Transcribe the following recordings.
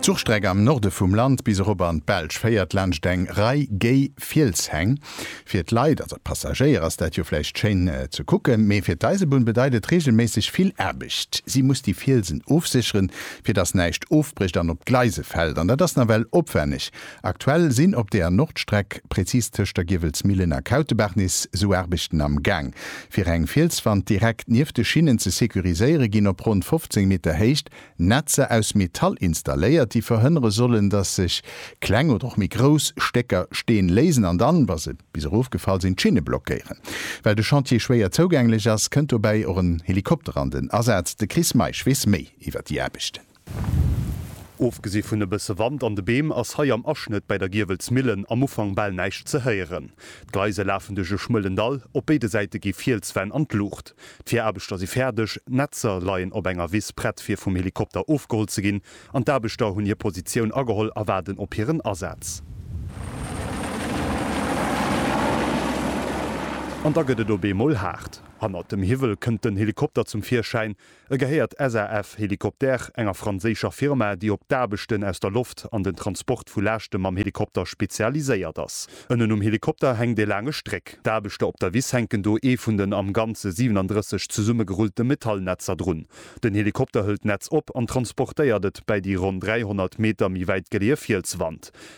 D'Zuchstreck am Norde vum Land bis erop an d'Belsch féiert laanscht eng Rei géi Fielshäng. Fir d'Leit, also d'Passagéier, ass dat jo vläicht schéin ze kucken, mee fir d'Eisebunn bedeit et reegelméisseg vill Aarbecht. Si muss déi Fielsen ofsécheren, fir dass näischt ofbrécht an op d'Gleise fält. An dat ass nawell opwänneg. Aktuell sinn op der Nordstreck, präzis tëscht der Giewelsmillen a Kautebaach-Nice, sou Aarbechten am Gaang. Fir eng Fielswand direkt nieft de Schinnen ze securiséiere ginn op ronn 15 Meter Héicht Netzer aus Metall installéiert, déi verhënnere sollen, datt sech kleng oder och méi grouss Stécker Steen léisen an dann, wa se bis erof gefall sinn, d'Schinne blockéieren. Well de Chantier schwéier zougänglech ass, kënnt dobäi och en Helikopter an den Asaz. De Chris Meisch weess méi iwwer déi Aarbechten. Ofgesi vun e bësse Wand an de Beem ass hei am Aschnëtt bäi der Giewelsmillen am Ufank bal näischt ze héieren. D'Gleise lafen duerch e schmuelen Dall, op béide Säite gi Fielswänn an d'Luucht. D'Viraarbechter si fäerdeg, d'Netzer leien op enger Wiss prett fir vum Helikopter ofgeholl ze ginn an d'Aarbechter hunn hir Positioun ageholl a waarden op hiren Asaz. An da gëtt et op eemol haart. Hannert dem Hiwwel kënnt den Helikopter zum Virschäin, E gehéiert SAF Hélicoptères, enger franséischer Firma, déi op d'Aarbechten aus der Loft an den Transport vu Laaschte mam Helikopter spezialiséiert ass. Ënnen um Helikopter hänkt e laange Stréck. D'Aarbechter op der Wiss hänken do ee vun den am Ganze 37 zesummegerullte Metallnetzer drun. Den Helikopter hëlt d'Netz op an transportéiert et bäi déi ronn 300 Meter méi wäit geleeë Fielswand.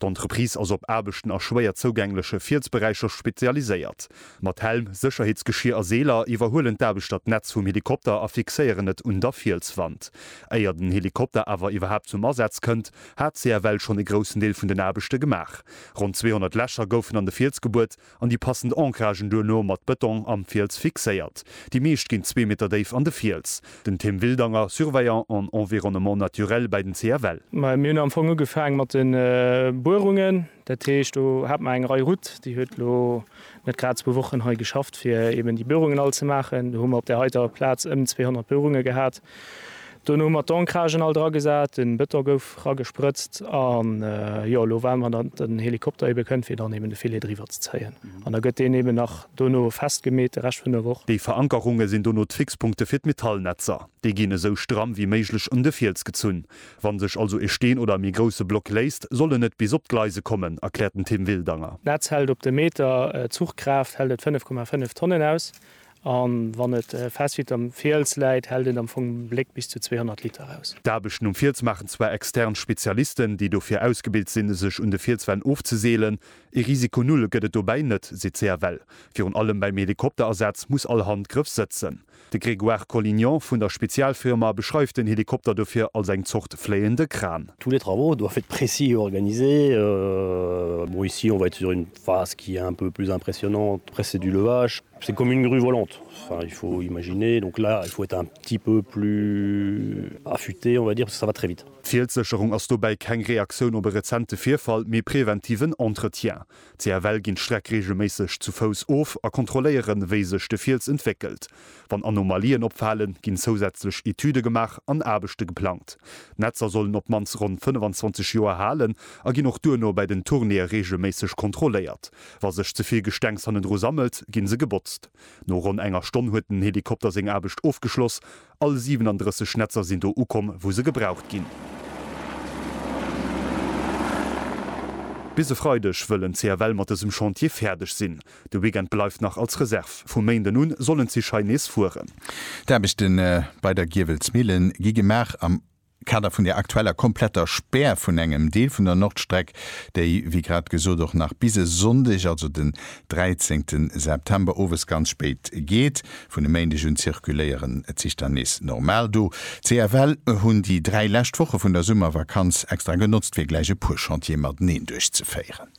D'Entreprise ass op Aarbechten a schwéier zougängleche Fielsberäicher spezialiséiert. Mat Helm, Sécherheetsgeschier a Seeler iwwerhuelen d'Aarbechter d'Netz vum Helikopter a fixéieren et un der Fielswand. Éier den Helikopter awer iwwerhaapt zum Asaz kënnt, hat CFL schonn e groussen Deel vun den Aarbechte gemaach. Ronn 200 Lächer goufen an de Fiels gebuert an déi passend Ancragen duerno mat Bëtong am Fiels fixéiert. Déi meescht ginn zwee Meter déif an de Fiels. Den Tim Wildanger, Surveillant en environnement naturel bäi den CFL. Mir hunn am Fong ugefaang mat de Buerungen. Dat heescht, do hat mer eng Rei Route, déi huet elo net grad zwou Wochen hei geschafft, fir eeben déi Buerungen all ze maachen. Do hu mer op där heiter Plaz ëm 200 Buerunge gehat. Dono hu mer d'Ancragen all dra gesat, de Bëton gouf ragesprëtzt an jo elo waarde mer datt den Helikopter ebe kënnt fir dann eben de Filet driwwer ze zéien an da gëtt deen eben nach dono festgemeet de Rescht vun der Woch. Déi Verankerunge sinn dono d'Fixpunkte fir d'Metallnetzer. Déi ginn esou stramm wéi méiglech un de Fiels gezunn. Wann sech also e Steen oder e méi grousse Block léisst, soll en net bis op d'Gleise kommen, erkläert den Tim Wildanger. D'Netz hält op de Meter, d'Zuchkraaft hält et 5,5 Tonnen aus A wann et fest wéi et am Fiels läit, hält et am Fong Bléck bis zu 200 Liter aus. D'Aarbechten um Fiels maachen zwar extern Spezialisten, déi dofir ausgebilt sinn, sech un de Fielswänn ofzeseelen. Ee Risiko null gëtt et dobäi net, seet d'CFL. Virun allem beim Helikopterasaz muss all Handgrëff sëtzen. De Grégoire Collignon vun der Spezialfirma beschreift den Helikopter dofir als eng Zort fléiende Kran. Tous les travaux doivent être précis et organisés. Bon, ici on va être sur une phase qui est un peu plus impressionnante, après c'est du levage. C'est une commune rue volante, enfin il faut imaginer, donc là il faut être un petit peu plus affûté on va dire, parce que ça va très vite. D'Fielssécherung ass dobäi keng Reaktioun op e rezente Virfall, mee preventiven Entretien. CFL ginn d'Streck reegelméisseg zu Fouss of a kontrolléieren, wéi sech de Fiels entwéckelt. Wann Anomalien opfalen, ginn zousätzlech Etüde gemaach an Aarbechte geplangt. D'Netzer sollen op d'mannst ronn 25 Joer halen a ginn och duerno bei den Tournéeë reegelméisseg kontrolléiert. Wa sech ze vill Gestengs hannendru sammelt, ginn se gebotzt. No ronn enger Stonn huet den Helikopter seng Aarbecht ofgeschloss. All 37 Netzer sinn do ukomm, wou se gebraucht ginn. Bis e Freideg wëllen d'CFL mat dësem Chantier fäerdeg sinn. De Weekend bleift nach als Reserv. Vum Méinden un sollen d'Zich hei nees fueren. D'Aarbechte bei der Giewelsmillen gi gemaach am Kader vun der aktueller kompletter Spär vun engem Deel vun der Nordstreck, déi wéi grad gesot och nach bis e Sonndeg, also den 13 September owes ganz spéit geet. Vun e Méindeg un zirkuléieren d'Zich dann nees normal. Do, CFL, hunn déi dräi lescht Woche vun der Summervakanz extra genotzt fir gläich e puer Chantiere mateneen duerchzeféieren.